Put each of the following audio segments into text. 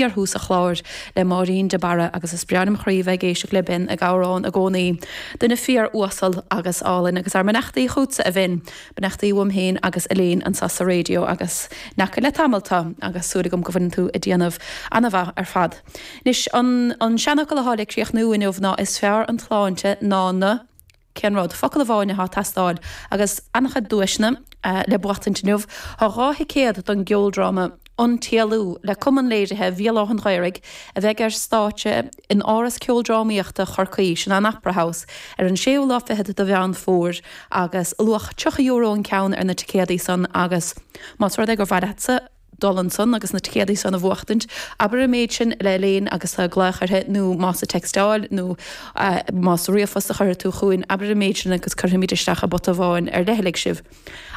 Bhí orthu sa chlár le Máirín de Barra agus is breá lem chroí bheith ag éisteacht le Ben ag amhrán i gcónaí. Duine fíor uasal agus álainn agus ár mbeannachtaí chughtsa a Bhen, beannachtaí uaim féin agus Elaine anseo sa raidió agus n'fheaca le tamall tú agus súil agam go bhfuileann tú ag déanamh ana mhaith ar fad. Anois an seanfhocal athá le críochnú inniu ná is fearr an tsláinte ná na. Cén rud? Focal amháin atá ag teastáil, agus an-chuid duaiseanna le buachtaint inniu. Tá dhá thicéad don gceoldráma An tÉalú le Cumann Léirithe Bhéal Átha'n Ghaorthaidh, a bheidh ar stáitse in Áras Ceoldrámaíochta Chorcaí, sin an Opera House, ar an séú lá fichead de Mheán Fómhair, agus luach €30 an ceann ar na ticéadaí san, agus más rud é gur mhaith leatsa, dul ansan agus na ticéadaí san a bhuachtaint, abair an méid sin le Elaine agus tú ag glaoch uirthi nó más ag teicstáil nó más ríomhphost a chuirfidh tú chugainn, abair an méid sin agus cuirfimid isteach i bpota amháin ar leithligh sibh.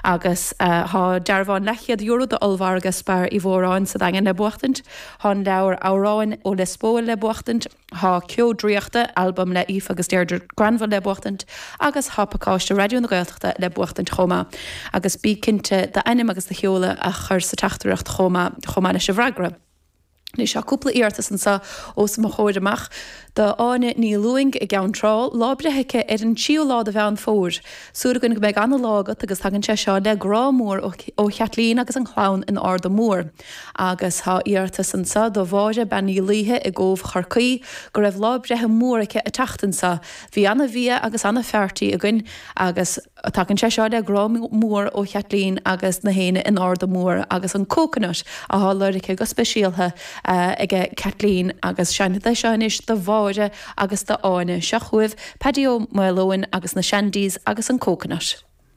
Agus tá dearbhán leathchéad euro d'ollmhargadh Spar Uí Mhóráin sa Daingean le buachtaint, tá an leabhar Amhráin ó Lios Póil le buachtaint, Tá Ceo Draíochta, albam le Aoife agus Deirdre Granville le buachtaint agus tá pacáiste Raidió na Gaeltachta le buachtaint chomh maith. Agus bí cinnte d'ainm agus do sheoladh a chur sa teachtaireacht chomh maith, chomh maith leis an bhfreagra. Anois tá cúpla iarratas anseo os mo chomhair amach, d'Áine Ní Lúing i gCeann Trá, lá breithe aici ar an 3ú lá de Mheán Fómhair. Súil againn go mbeidh an-lá agat agus tagann sé seo le grá mór ó Chaitlín agus an chlann in Arda Mór. Agus tá iarratas anseo do Mháire Bean Uí Laoithe i gCóbh Chorcaí, go raibh lá breithe mór aici an tseachtain seo. Bhí ana-bhia agus ana-pheartí againn agus tagann sé seo le grá mór ó Chaitlín agus na héinne in Arda Mór agus an coconut athá lorgtha go speisialtha aige Caitlín agus seinnfidh sé seo anois do Mháire agus d'Áine. Seo chugaibh Paddy Ó Maoleoin agus na Shandies agus an coconut.